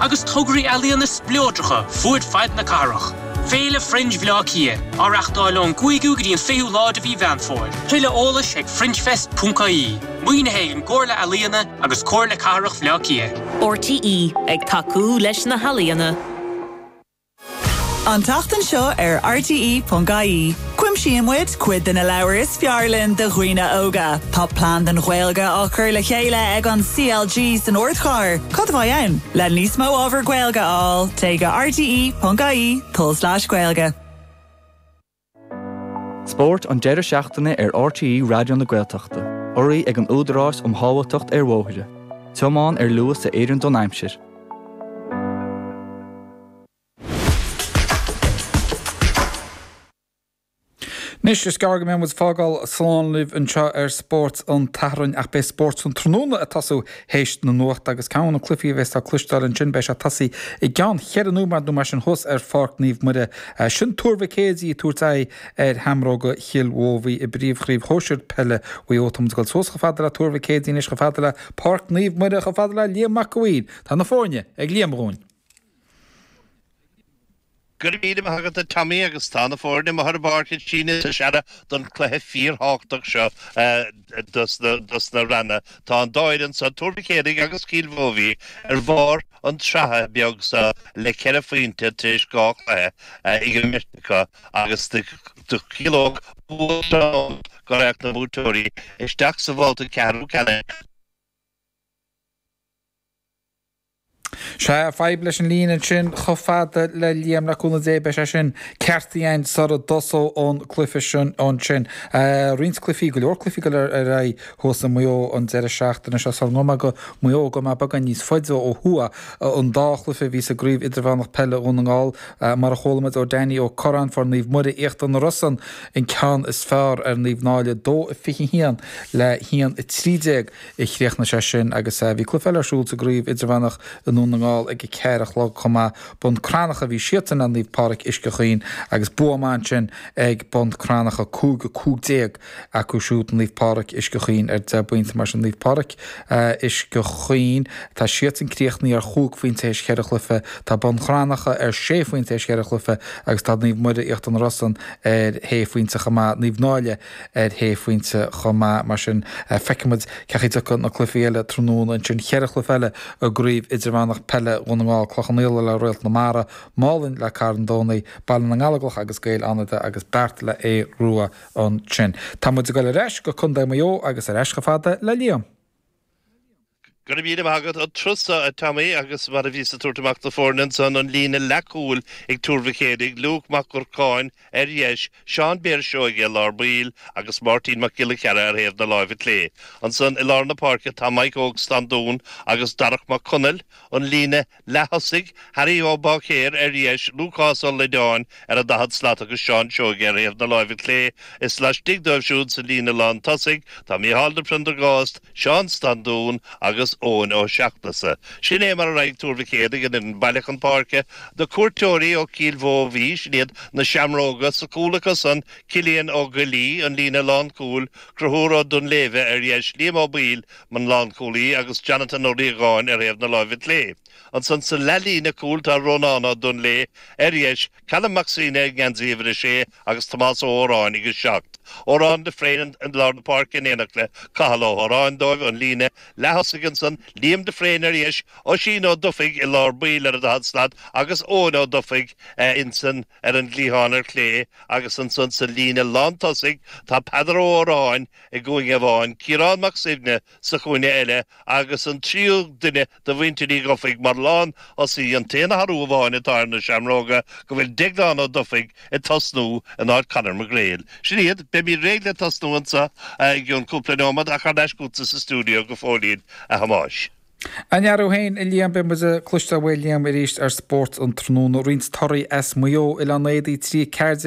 agus tograí ealaíona spleodracha fud fad na cathrach. Féile Fringe Bhaile Átha Ciath, á reachtáil ón gcúigiú go dtí an fichiú lá de mhí Mheán Fómhair. Tuilleadh eolais ag fringefest.ie, maoinithe ag an gComhairle Ealaíona agus Comhairle Cathrach Bhaile Átha Ciath. RTÉ ag tacú leis na healaíona. An tseachtain seo ar RTÉ.ie, cuimsíonn muid cuid de na leabhair is fearr linn do dhaoine óga. Tá plean don Ghaeilge á cur le chéile ag an CLG san ardchathair. Cad a bheidh ann? Le níos mó ábhar Gaeilge a fháil, téigh go RTÉ.ie/Gaeilge. Spórt an deireadh seachtaine ar RTÉ Raidió na Gaeltachta. Urraithe ag an Údarás um Shábháilteacht ar Bhóithre. Tiomáin ar luas a oireann don aimsir. Anois is gearr go mbeidh muid ag fágáil slán libh anseo ar Spórt an tSathairn ach beidh Spórt an tráthnóna ag tosú théis na nuachta agus ceann de na cluifí a bhéas le cloisteáil ansin beidh sé ag tosaí i gceann cheithre nóimeád nó mar sin thuas ar Pháirc Naomh Muire. Sin Tuar Mhic Éadaigh ag tabhairt aghaidh ar Sheamróga Chill Mobhí i bpríomhchraobh shóisear peile Mhaigh Eo. Táimid ag dul suas chomh fada le Tuar Mhic Éadaigh anois chomh fada le Páirc Naomh Muire chomh fada le Liam Mac an Mhaoir. Tá na foirne ag Liam dhúinn. Go raibh míle maith agat a Tommy agus tá na foirne amuigh ar an bpáirc ag síneadh is ag searradh don cluiche fíorthábhachtach seo dos na ranna. Tá an dá fhoireann so, Tuar Mhic Éadaigh agus Cill Mobhí, ar bharr an tsratha beag so le ceithre phointe tar éis dhá chluiche imeartha acu agus do chiallódh bua tráthnóna go raghadh na buaiteoirí isteach sa bhabhta ceathrú ceannais. Sea, fadhb leis an líne ansin chomh fada le Liam, le cúnamh Dé, beidh sé sin ceart againn sara dtosóidh an cluife sin ansin. Roinnt cluifí, go leor cluifí ag goil ar aghaidh thuas i Maigh Eo an deireadh seachtaine seo, sara ngabhfaidh mé go Maigh Eo, gabhfaidh mé beagán níos faide ó thuaidh an dá chluife a bhí sa gcraobh idirmheánach peile Dhún na nGall, mar a chuala muid ó Danny Ó Curráin, fuair Naomh Muire Íochtar na Rosann, an ceann is fearr ar Naomh Náille, 2-21 le 1-13. Chríochnaigh sé sin agus bhí cluiche eile ar siúl sa gcraobh idirmheánach i nDún na nGall ag a ceathair a chlog chomh maith. Bun Cranncha a bhí siadsan le Naomh Pádraig Uisce Chaoin agus bua maith ansin ag Bun Cranncha, 5-15 acu siúd Naomh Pádraig Uisce Chaoin ar 10 bpointe. Mar sin Naomh Pádraig Uisce Chaoin tá siadsan críochnaithe ar chúig phointe théis cheithre chluiche, tá Bun Cranncha ar sé phointe théis cheithre chluiche agus tá Naomh Muire Íochtar na Rosann ar shé phointe chomh maith. Naomh Náille. ar shé phointe chomh maith. Mar sin, feicfimid cén chaoi a dtiocfaidh na cluichí eile tráthnóna. Ansin, ceithre chluiche eile i gCraobh Idirmheánach Peile Dhún na nGall, Cloich Cheann Fhaola le Réalt na Mara, Málainn le Carn Domhnaigh, Baile na nGallóglach agus Gaeil Fhánada agus Beart le hAodh Rua. Ansin, tá muid ag dul ar ais go Contae Mhaigh Eo agus ar ais chomh fada le Liam. Go raibh míle maith agat an turas seo, a Tommy, agus mar a bhíos ag tabhairt amach na foirne ansan, an líne leath cúil ag Tuar Mhic Éadaigh, Luke Mac Dhurcáin, ar dheis, Seán Bear Seoige i lár baill agus Máirtín Mac Giolla Cheara ar thaobh na láimhe clé. Ansan i lár na páirce tá Mike Óg Standún agus Darach Mac Conaill, an líne leath-thosaigh Harry Ó Báicéir, ar dheis, Lúcás Ó Loideáin ar an daichead slat agus Seán Seoige ar thaobh na láimhe clé is laistigh dóibh siúd sa líne lán tosaigh tá Micheál de Priondargást, Seán Standún agus Eoin Ó Seachnasaigh. Sin é mar a raghaidh Tuar Mhic Éadaigh an fhoireann baile chun páirce na cuairteoirí ó Chill Mhóibhí, sin iad Na Seamróga, sa chúl acusan, Cillian Ó Goillí, an líne lán cúil, Conchúr Ó Duinnshléibhe, ar dheis, Liam Ó Baoill, mar lánchúlaí agus Jonathan Ó Riagáin ar thaobh na láimhe clé. Ansan sa leathlíne cúil tá Rónán Ó Duinnshléibhe, ar dheis, Callum Mac Suibhne i ngeansaí uimhir a sé agus Tomás Ó hÓráin ag a seacht. Odhrán de Fréine i lár na páirce in éineacht le Cathal Ó hÓráin dóibh an líne leath-thosaigh ansan Liam de Fréine ar dheis, Oisín Ó Dufaigh i lár baill ar a daichead slat agus Eoin Ó Dufaigh insan ar an gcliathán ar chlé agus ansan sa líne lán tosaigh tá Peadar Ó hÓráin i gcúinne amháin, Ciarán Mac Suibhne sa chúinne eile agus an tríú duine de Mhuintir Uí Dhufaigh mar lán thosaí, an t-aon athrú amháin atá ar na Seamróga go bhfuil Deaglán Ó Dufaigh ag tosnú in áit Conor McGraill. Sin iad, beimid réidh le tosnú anso i gcionn cúpla neomat ach thar n-ais chugatsa sa stiúideo go fóillín, a Thomáis. An-fhear thú féin, a Liam, beidh muid ag cloisteáil uaidh Liam arís ar Spórt an tráthnóna. Roinnt torthaí as Maigh Eo, Oileán Éadaí, 3-14,